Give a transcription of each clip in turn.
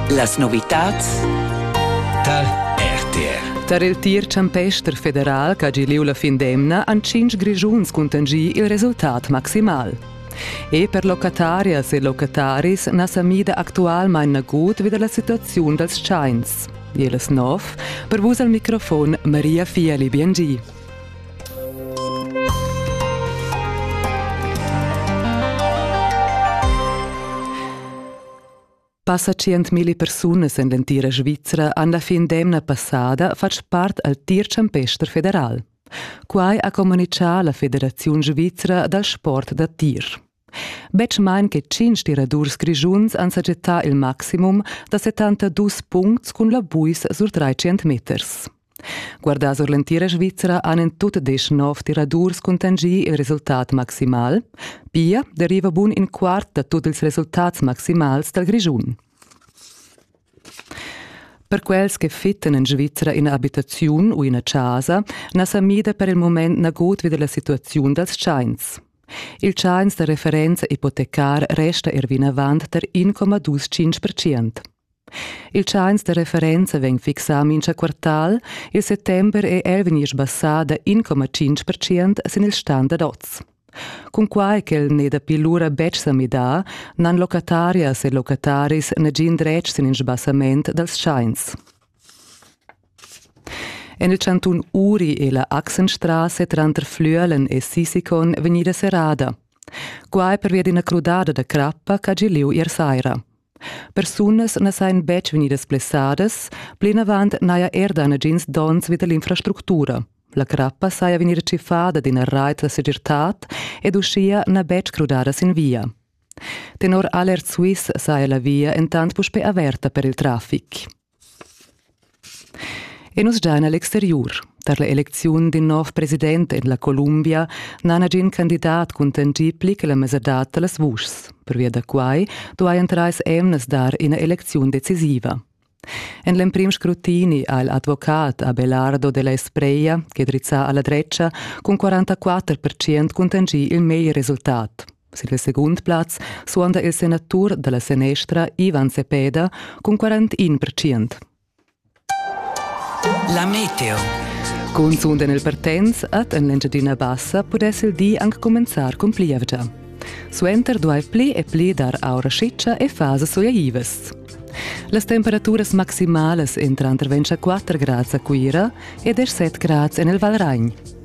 Las novitads tar RTR. Tar il tir champester federal ch'ha gì lieu la fin d'emna han tschintg Grischuns cuntanschì il resultat maximal. E per locatarias e locataris na sa mida actualmain nagut vi da la situaziun dals tschains. Jelis Nov, per vus al microfon Maria Fieli Biengi. Passa tschientmilli persunas en l'entira Svizra han la fin d'emna passada fatg part al tir-champester federal. Quai ha communitgà la Federaziun svizra dal sport da tir. Betg main che tschintg tiradurs grischuns han sajettà il maximum da 72 puncts cun la buis sur 300 meters. Guardà sur l'entira Svizra han en tut desch nov tiradurs cuntanschì il resultat maximal. Pia deriva bun in quart da tut ils resultats maximals dal Grischun. Per quels che fittan en Svizra ina abitaziun u ina chasa na sa mida per il mument nagut vi dalla situaziun dals tschains. Il tschains da referenza ipotecar resta er vinavant tar 1,25 percent. Il tschains da referenza vegn fixà mincha quartal, il settember è er vegnir sbassà da 1,5 percent sin il standard oz. Cunquai ch'el n'è dapi lura betg sa midà, n'han locatarias e locataris nagin dretg sin il sbassament dals tschains. En il cantun Uri è la Achsenstrasse tranter Flüelen e Sisikon vegnida serrada. Quai pervia d'ina crudada da crappa ch'ha gì lieu ier saira. Persunas na sajan betg vegnidas blessadas, plinavant n'haja er dà nagins donns vid l'infrastructura. La crappa saja vegnida tschiffada d'ina rait da segirtad ed uschia n'ha betg crudada sin via. Tenor Alert Swiss saja la via entant puspè averta per il traffic. E nus giain a l'exteriur. Tar l'elecziun d'in nov president en la Columbia n'ha nagin candidat cuntanschì pli che la mesadad da las vuschs. Pervia da quai duajan trais emnas dar ina elecziun decisiva. En l'emprim scrutini ha il advocat Abelardo de la Espreia, che drizza a la dretga, cun 44% cuntanschì il meglier resultat. Sin il segund plaz suonda il senatur dalla senestra Ivan Sepeda cun 41 percient. La meteo. Cunzunt en il Pertens at en l'Engiadina Bassa pudess il di anche cominciar con plievgia. Suenter duai pli e pli dar aura schiccia e fasas oiaivas. Las temperaturas maximalas entran tranter 24 grads a Cuira e 17 grads en il Valragn.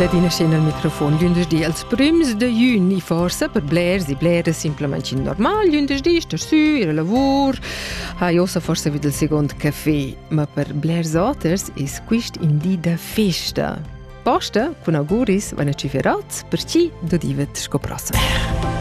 Ladinascha nel microfon lündeschdi als prüms de jün i forsa per blers e bleras simplamaing normal lündeschdi star sü ir a lavur ha ossa forsa vid il second café ma per blers oters es quist in di da festa Posta cun auguris van a ciferats per chi dodivet sco prossem